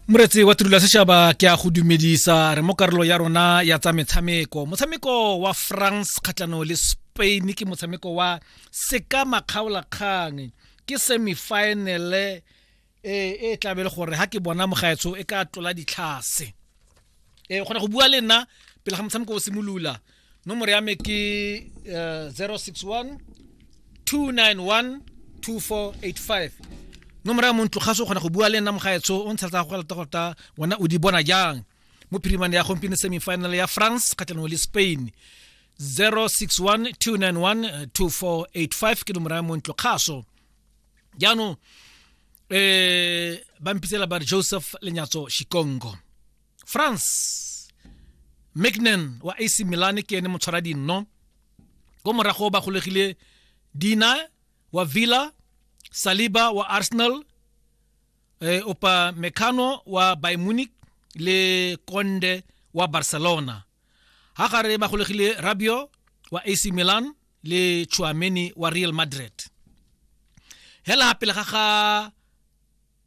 moretsi wa tirelo ya setšhaba ke a go dumedisa re mo karolo ya rona ya tsa metshameko motshameko wa france kgatlhano le spain ke motshameko wa seka makgaolakgang ke semifinale e e tlabe le gore ha ke bona mogaetsho e ka tlola ditlhase e kgona go bua le nna pele ga motshameko o simolola nomoro ya me ke uh, 061 291 2485 nomoro ya montlo ga se o kgona go bua le nna mogaetsho o ntsha tsa go galata gota wena o di bona jang mo phirimane ya gompieno semifinal ya france kgatlhanong le spain 061 291 2485 ke nomoro ya montlo kgaso jaanong eh ba mpitsela ba joseph lenyatso shikongo france mcnan wa ac milan ke ene motshwara dinno ko morago ba golegile dina wa villa saliba wa arsenal eh, opa mecano wa by munich le conde wa barcelona ga gare ba golegile rabio wa ac milan le chuameni wa real madrid hela pele ga ga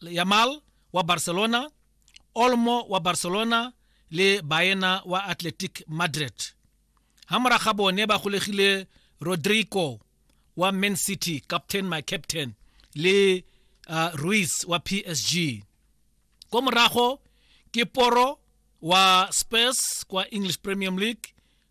Yamal wa Barcelona, Olmo wa Barcelona le Baena wa Athletic Madrid. Ha mora ga bone ba golegile Rodrigo wa Man City, captain my captain, le uh, Ruiz wa PSG. Ko morago ke Poro wa Spurs kwa English Premium League,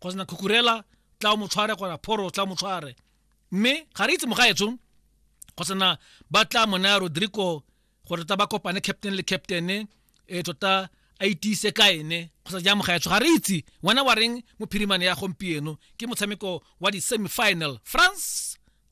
kgotsa na khukurela tla o mo tshware kgona phoro tla mo tshware mme ga re itse mogaetsho kgotsa na ba tla mo naya rodrigo gore ta ba kopane captain le captain e eh, tota a itise ka ene kgotsa ja mogaetsho ga re itse wena wa reng mo phirimane ya gompieno ke motshameko wa di-semifinal france